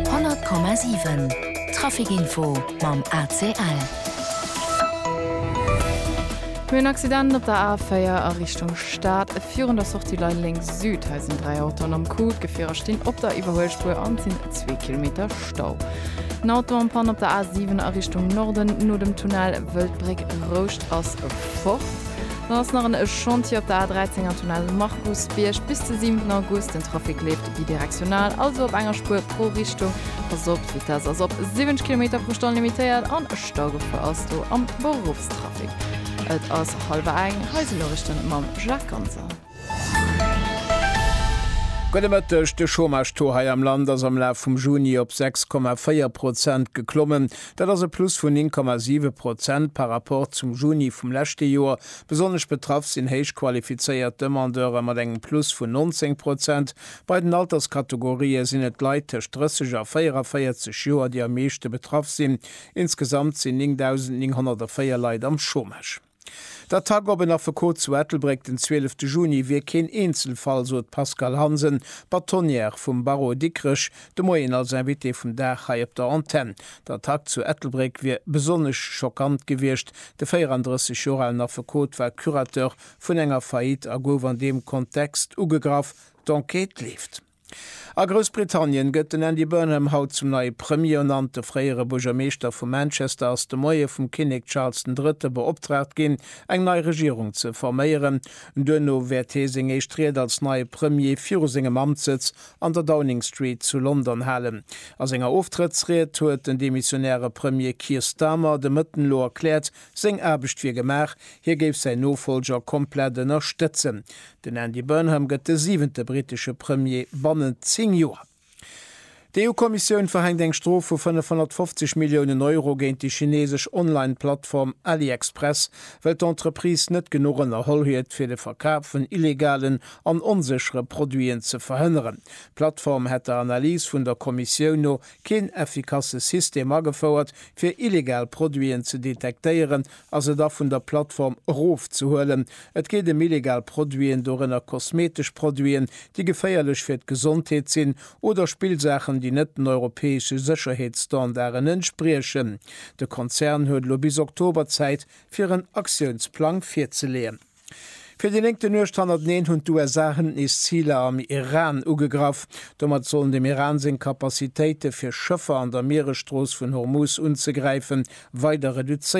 100,7 Trafic Info mam ACL. Mir hunn en Accident op der A4 a Richtung Stad. Virun der Sortie Lay Lénks Süd, hei sinn dräi Autoen am Coup. D'Gefierer stinn op der Iwwerhuelspuer an et sinn zwee Kilometer Stau. En Auto am Pann op der A7 a Richtung Norden no dem Tunnel Wëldbréck Rouscht ass fort. Dann ass nach en Chantier op der A13 am Tunnel Markusbierg bis de 7 August. Den Trafic leeft. Bidirektional, also op enger Spuer pro Richtung. Pass op, d'Vitess ass op 70 Kilometer pro Stonn limitéiert an Staugefor ass do am Beruffstrafic. Et ass hallwer eng, hei si Noriichten mam Jacques Ganser. Gudde Mëtteg, De Chômage-Taux hei am Land ass am Laf vum Juni op 6,4 Prozent geklommen. Dat ass e Plus vun 9,7 Prozent par Rapport zum Juni vum leschte Joer. Besonnesch betraff sinn héich qualifizéiert Demandeure mat engem Plus vun 19 Prozent. Bei den Alterskategorië sinn et d'Leit tëscht 30 a 44 Joer, déi am meeschte betraff sinn. Insgesamt sinn 9.904 Leit am Chômage. D'Attack op en Affekot zu Ettelbréck den 12 Juni wier keen Eenzelfall, sot d'Pascale Hansen, Bâtonnière vum Barreau Dikrech, De Moien als Invité vum Dag hei op der Antenn. D'Attack zu Ettelbréck wier besonnesch schockant gewiescht. De 34 Joer alen Affekot war Curateur vun enger Faillite a gouf an deem Kontext ugegraff. D'Enquête leeft. A Groussbritannien gëtt den Andy Burnham haut zum neie Premier ernannt. De fréiere Buergermeeschter vu Manchester ass de Moie vum Kinnek Charles den Drëtte beoptraagt ginn, eng nei Regierung ze forméieren. Duerno wäert hee seng éischt Ried als neie Premier viru sengem Amtssëtz An der Downing Street zu London halen. A senger Oftrëttsried huet den demissionäre Premier Keir Starmer de Mëtten elo erkläert, seng Aarbecht wier gemaach, hie géif säin Nofollger komplett ënnerstëtzen. Den Andy Burnham gëtt de siwente brittesche Premier bannent zéng Joer. D'EU-Kommissioun verhänkt eng Strof vu 550 Milliounen Euro géint déi chinesesch Online-Plattform AliExpress, well d'Entreprise net genuch ënnerholl huet, fir de Verkaf vun illegalen an onséchere Produiten ze verhënneren. D'Plattform hätt der Analys vun der Kommissioun no keen effikasse System agefouert, fir illegal Produiten ze detektéieren a se da vun der Plattform erofzehuelen. Et geet ëm illegal Produiten, dorënner kosmetesch Produiten, déi geféierlech fir d'Gesondheet sinn, oder Spillsaachen, déi net den europäesche Sécherheetsstandarden entspriechen. De Konzern huet elo bis Oktober Zäit, fir en Aktiounsplang virzeleeën. Fir déi néngte Nuecht hannerteneen hunn d'USA hënt nees Ziler am Iran ugegraff. Domat sollen dem Iran seng Kapazitéite fir Schëffer an der Mieresstrooss vun Hormuz unzegräifen, weider reduzéiert ginn.